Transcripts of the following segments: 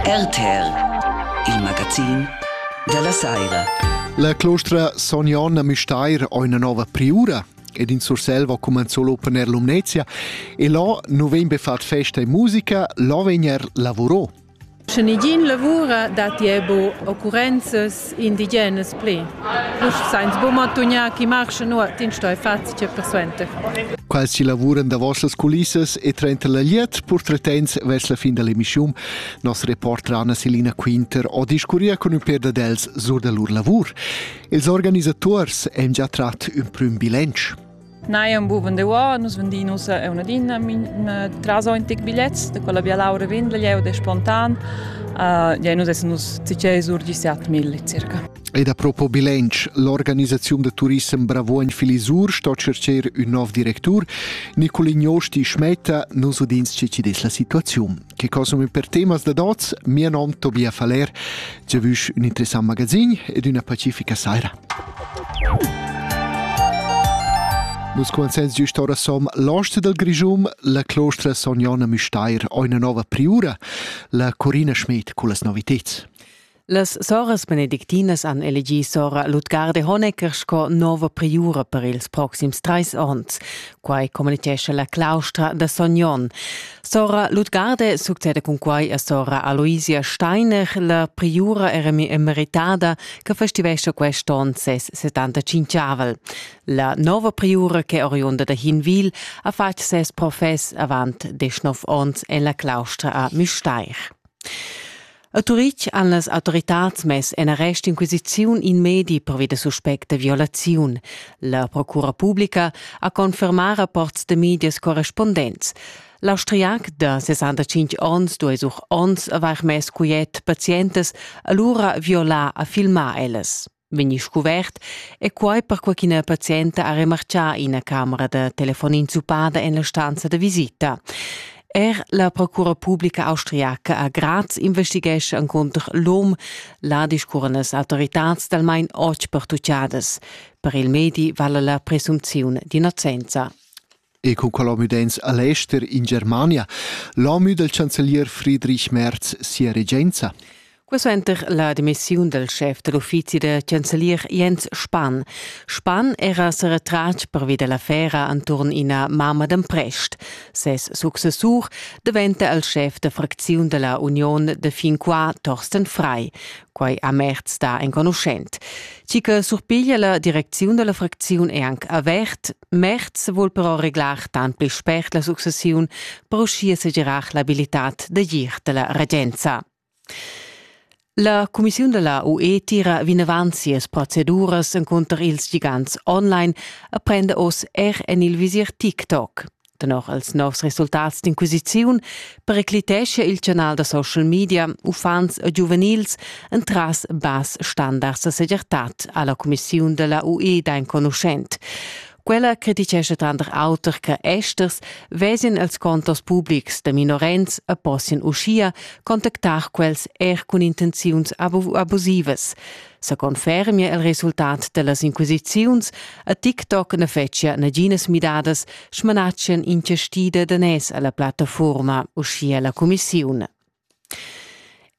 RTR, il magazin dalla Saira. La clostra Son Jon a Müstair ha una nova priura ed in Surselva cumenzò l'open air Lumnezia e là nu vegn be fat festa e musica, là vegn er lavurò. Sche negin lavura datti ebo occurrenzas indigenas pli. Vus sainz buca matugnar chi marschen ora, tin stoi faz che persuenter. Quels chi lavuran davos las culissas e trenta la liet portretens vers la fin dell'emissiun, nos reporter Anna Selina Quinter ho discurria con ün per da dels sur da lur lavur. Ils organisators han già trat ün prüm bilancio. Neu ein buca vendeu, nus vendin ussa una dinna tras tic bigliets, da quella Via Laura Windel, jeu de spontan. Uh, ja, nus essen nus zicei sur 17.000 circa. Ed a propo bilanc, l'organisaziun da turissem Bravuogn Filisur sto cercer un nov directur. Nicolin Josti Schmetta, nos udins ce ci des la situaziun. che consumi per temas da dots, mia nom Tobia Faller, ci vusch un interessant magazin ed una pacifica saira. Nus consens giust ora som l'oste del Grischum, la clostra Son Jonna Müsteir, una nova priura, la Corina Schmidt cu las novitets. Las soras benedictinas han elegì sora Lutgar de Honecker sco nova priura per ils proxims trais onns. Quai communitgescha la claustra da Sognon. Sora Lutgarde succede cun quai a sora Aloisia Steiner. La priura era emeritada che festivescia quest onn ses 75-avel. La nova priura che oriunda da Hinwil ha fatg ses profess avant desch nov onns en la claustra a Müstair. A Turitg han las autoritads mess en arrest inquisiziun in medi pervi da suspect da violaziun. La procura publica ha confermà rapports da medias correspondents. L'austriac da 65 onns duai sur onns avair mess quiet pazientas, alura violà a filmar ellas. vegni scuvert e quai perquai ch'ina pazienta ha remarchà ina camera da telefon inzuppada en la stanza da visita. Er la procura publica austriaca a Graz investighescha encunter l'om la discurrenas autoritads d'almain otg pertucciadas. Per il medi vala la presumziun d'innocenza. E cun quel hom udents a l'ester in Germania, l'hom dal chancelier Friedrich Merz sia regenza. Quessuenter la demissiun dal schef da l'uffizi da chancelier Jens Spahn. Spahn era sa retratg pervi da l'affera enturn ina mamma d'emprest. Ses successur daventa il schef da fracziun da la Union da fin qua Torsten Frei. Quai a Merz sta enconuschent. Chi che surpiglia la direcziun dalla fracziun è anche avert. Merz vuol però reglar tant pli spert la successiun per uschia segirar l'abilitad da gir della regenza. La cumissiun della UE tira vinavant sias proceduras incontro ils gigants online e prende oz er en il visir TikTok. Tenor els novs resultats d'inquisiziun pericliteschia il canal da social media uffants e giuvenils entras bass standards da segirtad alla Commissiun della UE d'enconuschent. Quella criticescha tranter auter che esters vesien els contos publics de minorenns e possien uschia contactar quels er cun intenziuns abusivas. sa confermia il resultat dellas inquisiziuns, a TikTok na fetschia naginas midadas, smanatschan inchestida danès alla plattafuorma, uschia la cumissiun.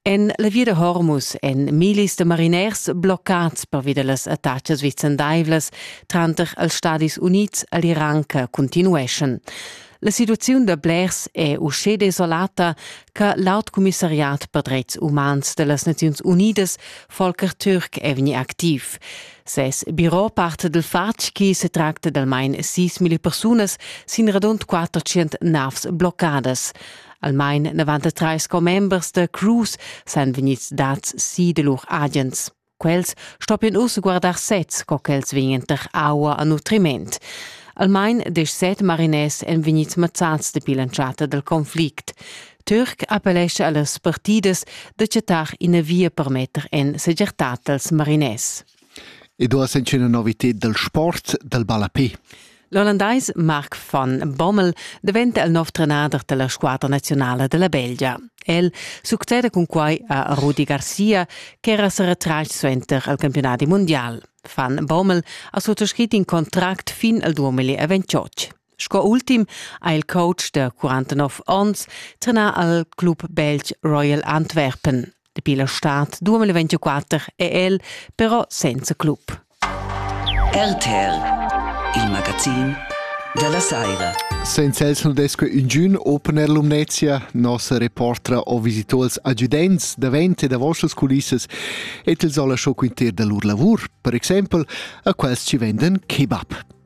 En la via da Hormus èn millis da mariners bloccads pervi da las attacas vicendaivlas tranter els Stadis Unids e l'Iran che continueschan. La situaziun da blers è uschè desolata che l'aut commissariat per dretgs umans da las Naziuns Unidas, Volker Türk, è vegnì activ. Ses biro parte dal fatg che se tracta d'almain 6.000 persunas sin radund 400 navs bloccadas. Almain 93 commembers da Cruise san vegnids dads si da lur agents. Quels stoppien uss guardar sez, co ch'els vegnan tar aua a nutriment. Almain desch set mariners èn vegnids mazzads dapi l'entschatta dal conflict. Türk appellescha a las partidas da chattar ina via per metter en segertad als mariners. Ed ora senc'è una novità dal sport dal ballapé. L'ollandais Mark van Bommel daventa il nov trenader dalla squadra nazionala della Belgia. El succeda cun quai a Rudi Garcia, che era seretratg suenter al campionat mondial. Van Bommel ha suttascrit in contract fin al 2028. Sco ultim ha il coach da 49 onns trenà al club belg Royal Antwerpen. Dapi la stad 2024 è el però senza club. RTL, il magazin della Saira. Senza els non desque ingün opener Lumnezia, nossa reportra o visitors adjudents davent e da vostras culissas et els ho lasciò quinter da lur lavur, per exempel a quels ci venden kebab.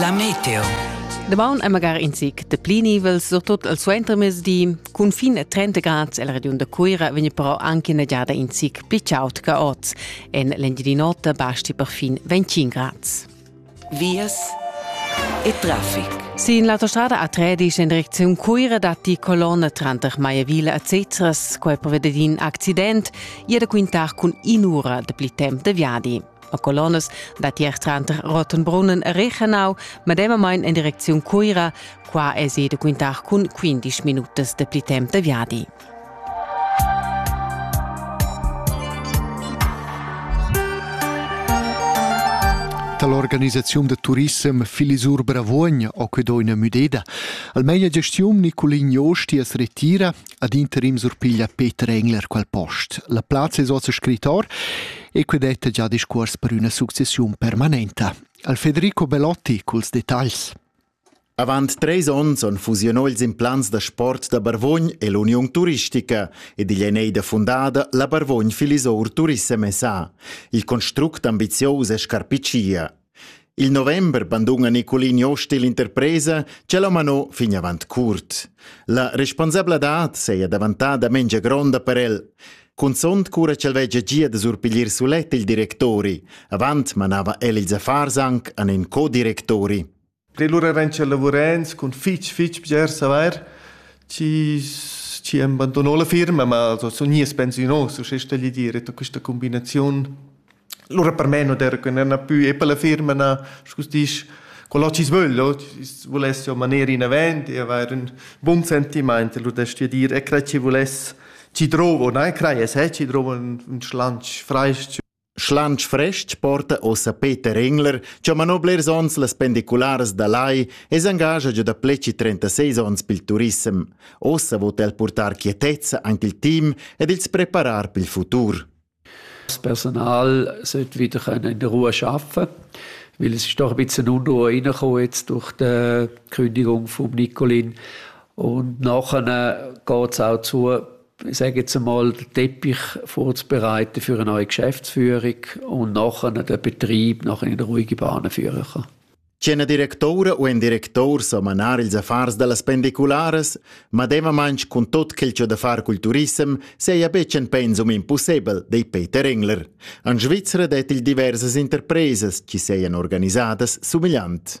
La meteo. Damaun è magari in zic de pli nivels, surtut al suentermezdi. Cun fin a 30 grad el regiun da Cuira vegn però anche una giada in zic pli chaud che oz. En l'Engiadin'Ota basti per fin 25 grad. Vias e traffic. Sin l'autostrada a Tredisch in direcziun Cuira dat die Kolonne tranter Maiavilla a Cezras, quai per vedere in accident, ia da quintar cun in'ura de pli temp de viadi. a colonnas datier tranter Rottenbrunnen e Rechenau, medemamain en direcziun Cuira. Qua è da quintar cun 15 minutas de pli temp de viadi. Dall'organisazione de turissem Filisur Bravuogn ho que do üna müdeda. Almeina gestiun Nicolin Josti as retira ad interim surpiglia Peter Engler quel post. La plazza es oz scrittor e que detta già discuors per üna successiun permanenta. Al Federico Belotti culs detagls. Avant treis onns on fusionò ils implants da sport da Barvogn e l'Uniun Turistica ed igl è neida fundada la Barvogn Filisour Turissem SA. Il construct ambizius e scarpicia. Il november banduna Nicolin Jost l'interpresa che l'ha manò fin avant curt. La responsabladad saja davantada mengia gronda per el. Cunzont cura ch'el vegia gia da surpiglier sulet il directori. Avant manava el ils affars anc an in co-directori. Pir lura vegn tschel lavurend cun fitg fitg piacer savair chi chi am bandunò la firma, ma so sun gnius pensiunos, uschè stagli dir, e da quista cumbinaziun. Lura per me non era que na pü e per la firma, na scu disch, quello chi's vögl, o chi's vuless jo maner inavant e avair ün bun sentimaint e lura stu dir, e crai chi vuless, chi drovo, na e crai e sè chi drovo ün ün schlantsch fraich-ch. Schlantsch frestg porta ossa Peter Engler, cha manò blers ons las pendicularas da Lai e s'engascha già da pleci 36 ons pel turissem. Ossa vot el portar quietezza anche il team ed ils preparar pel futur. Das Personal sollte wieder in der Ruhe arbeiten weil es ist doch ein bisschen unruhe reingekommen jetzt durch die Kündigung von Nicolin und nachher geht es auch zu, ich sage jetzt einmal, den Teppich vorzubereiten für eine neue Geschäftsführung und nachher den Betrieb nachher in ruhige Bahnen führen kann. C'en directoura u en directour samanar ils affars da las pendicularas, mademamain cun tot quel che da far cul turissem seia betg en pensum impossibel, dei Peter Engler. An Svizzera det il diversas interpresas chi seien organisadas sumigliant.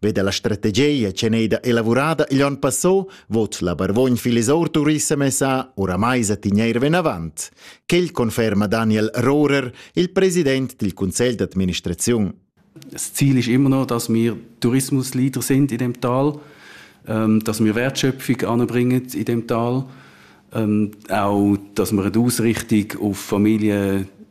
Ve dalla strategia che ei da elavurada igl onn passò, vot la Barvogn Filisor Turissem SA oramai sa tigneir venavant. Quel conferma Daniel Rohrer, il president dil Conselh d'administraziun. Das Ziel ist immer noch, dass wir Tourismusleader sind in dem Tal, ähm, dass wir Wertschöpfung anbringen in dem Tal, ähm, auch, dass wir eine Ausrichtung auf Familien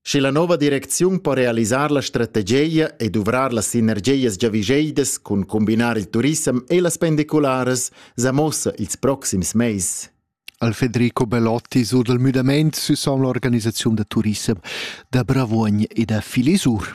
Sche la nova direcziun po realisar la strategia e duvrar las sinergias giavischeidas cun combinar il turissem e las pendicularas, sa mossa ils proxims mais. Al Federico Bellotti sur dal müdamaint süs l'organisaziun da turissem da Bravuogn e da Filisur.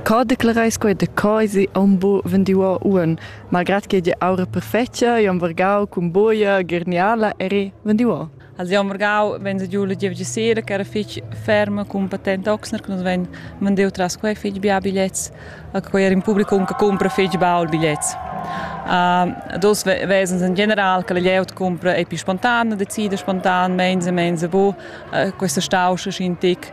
Co declareis quei da coisi aunc bu vendiuo uonn, malgrat che gia aura perfetga, io am vargau cun buia, gerniala eri vendiuo? Also io am vargau venza giu la giev sera che era fich ferma cun patent Oxner che nus vein vendiu tras quei fich bia bigliets, a quei era in publicum che cumpra fich baul bigliets. Uh, dus vesens in general che la glieud cumpra ei pi spontan, decida spontan, menza menza bu, uh, questa stauscha schin tic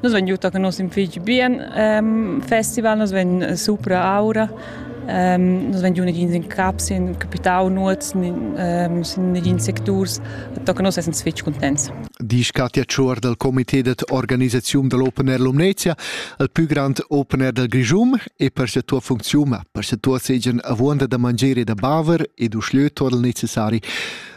Nus vegn giu con nos figl bien um, festival, nus vegn supra aura. Um, nus vegn giu negins in cap, sin capitau nuot, um, sin negins secturs. Tocca nus essens fitg contents. Disch Katja Tschuor dal comité de organisazione dell'Open Air Lumnezia, il più grande Open Air del Grigium e per sia tua funzione, per sia tua segian avuonda da mangere e da baver e du schlieu torl necessari.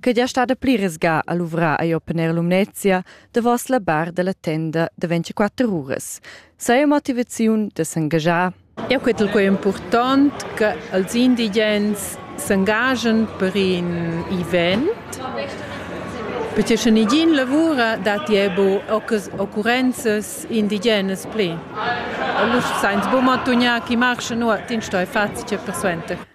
che gia stada pli resga a luvrar a Open Air Lumnezia davos la bar della tenda de 24 uras. Saja motivaziun de s'engagiar. Eu quetel quei important che els indigens s'engagen per in event perché sche nigin lavura datti ebo occurrenzas indigenas pli. Allora sainz bu mantugnar chi marcha nuot in stoi fazi che persuenter.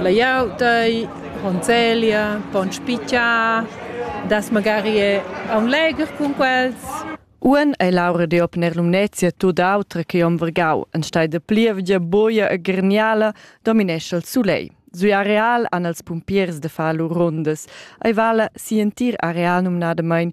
Laiau dei conzelia, pon spitgiar, das magari è aun legher cun quels. Uan ei Laura de op ner Lumnezia tut autra che om Vergau, en stai de plievgia boia e gerniala dominescha il sulei. Sui areal han els pumpiers de far lur rundas. Ei vala si entir areal numnadamain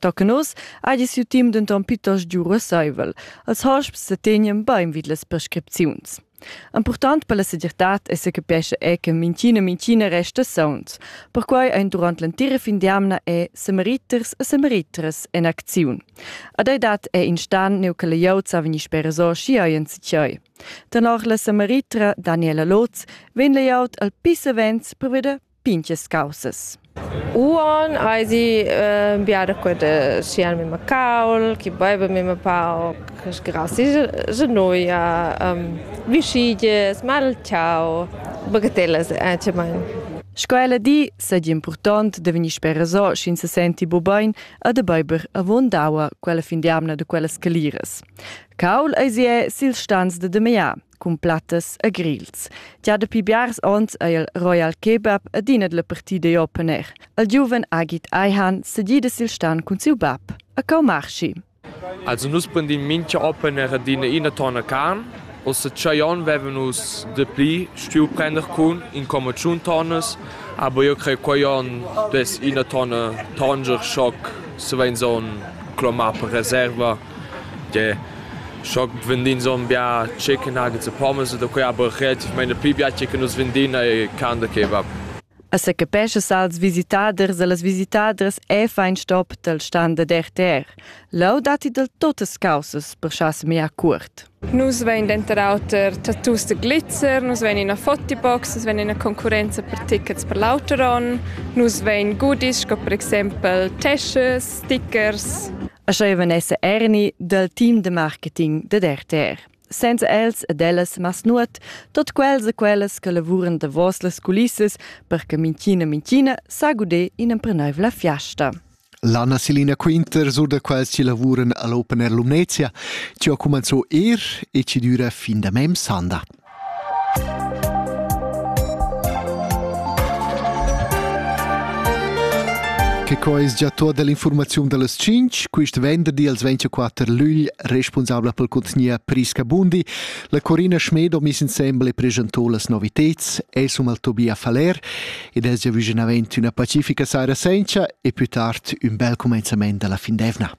Tochen oz hagi siu team denton plitost giu russeivel. Els hosps setegnan bein vid las prescripziuns. Impurtant per la segirtad è se capesce è che minchina minchina resta sauns. Perquai ein durant l'entira fin d'amna è samariters e samariters en acziun. Ad ei dat è instant neu che la gliaud sa vegnir spereso schi hai en sichai. Tenor la samaritra Daniela Lotz vegn la gliaud al pissavents per veder pinches causas. Uon aisi äh, biada queda sian mema caul, chi baiva mema pauc, grassi genoia, ähm, vischiges, malciau, bagatellas anciamain. Sco ella di, saja important da vegnir spereso, sch'ins se senti bu bain a de beiber avon daua quella fin di amna de quellas caliras. Caul eisi è sil stans de de mea. cun plattas e grils. Gia dapi biars onns è il Royal Kebab adina la partida open air. Il giuven Agit Aihan sedida sil stan cun siu bab a Kaumarshi. Also nus prendim mincha open air adina ina tonna carn. Ossa tschei on veven nus de pli stuiu prender cun in comma tschun tonnas, aber io crei quei on des ina tonne Tanger Schock se vein so clomar per reserva Tgè, scho vendin zon bia chicken nuggets e pommes e da quei aber relativmaing pli bia che nus vendin e can da kebab. A secapescha als visitaders e las visitadras è fein stop dal stand da RTR. Leu datti del totas causas per schas mia cuort. Nus vein denter auter tattoos da glitzer, nus vein ina fotibox, nus vein ina concurrenza per tickets per l'auter onn, nus vein goodies sco per exempel teschas, stickers. E sch'ei van esser erni dal team de marketing dad RTR. Senza els ed ellas mas nuot, tot quels e quellas che lavuran davos las culissas per che minchina minchina sa guder in empreneuivla fiasta. L'Anna Selina Quinter sur da quels chi lavuran all'Open Air Lumnezia chi ha cumanzò er e chi düra fin da mem sanda. Che co es già tot dell'informaziun dallas 5, quist venderdi als 24 lügl responsabla pel contgnier Prisca Bundi, la Corina Schmedo mis insembel e presentò las noviteds, es um al Tobia Faller ed es giavüschinavant üna pacifica saira sencha e pü tard ün bel cumenzament da la fin d'eivna.